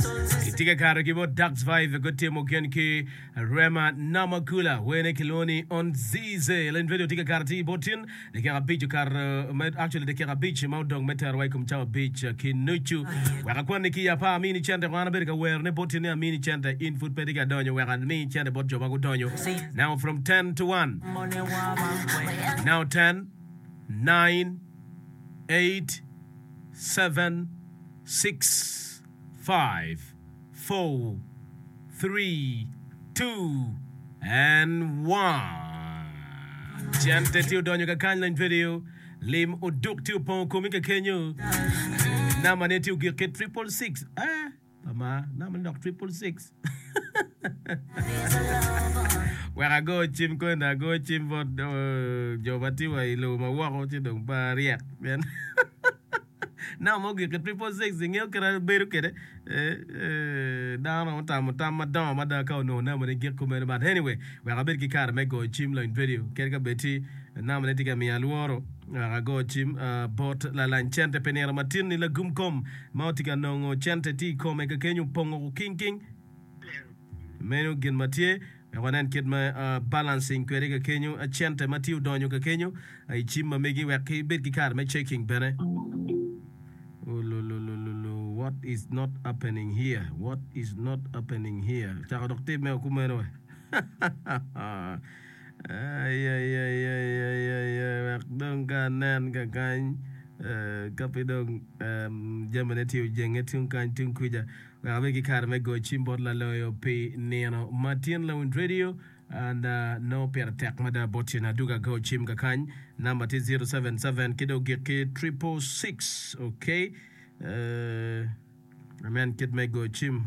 Itye ka kato ki bot Dax Vibe gutimo gen ki Rema Namakula wene kilwongo ni On Zize. Lin Vedio tye ka kato atir bot tin dakika abic okato me actually dakika abic ma odong me terowa i kom cawa abic ki nucu. Wek akwanni ki apa amini cente kwan abedo ka werone bot tin ni amini cente in pud pe tye ka donyo wek ami cente bot jo ma gudonyo. Now from 10 to 1. Now 10, 9, 8, 7, 6. five, four, three, two, and one Cente tye odonyo ka kany lany video Lim oduk tye opongo komi ka kenyo Nama ne tye ogik ki triple six Eh, ama nama ne dok triple six Wek ago cim kwene ago cim bot oh, jo ma tye wa i lobo ma woko ci dong pe aryek pien Namba mo gik ki triple six ingeyo kit ma bedo kwede dano romo tamo tam madongo mada ka onongo namba ne gik kumeno but anyway wek abed ki kare me goyo cim lony radio kadi ka bed tye namba ne tye ka miyo alworo wek ago cim bot lalany cente pi nino matin ni lagum kom ma otye ka nongo cente tye i kome ka kenyo pongo king king meno gin ma tye Wek wanen kit ma balancing kwede kakenyo, cente ma tye odonyo kakenyo i cim ma megi wek ki bed ki kare me checking bene. Ululululu what is not happening here what is not happening here cako dok timme o kumeno we ayayayayaya wek dong ka anen kakany ka pe dong jamine tye ojenge tung kany tung kuca. Wek abed ki kare me goyo cim bot Laloyo pi nino ma tyen Lawiny Radio, and nongo pire tek mada bot cen adwogi ago cim kakany. Number tye zero seven seven ki dong gikki triple six. Okay. Amen kit me goyo cim.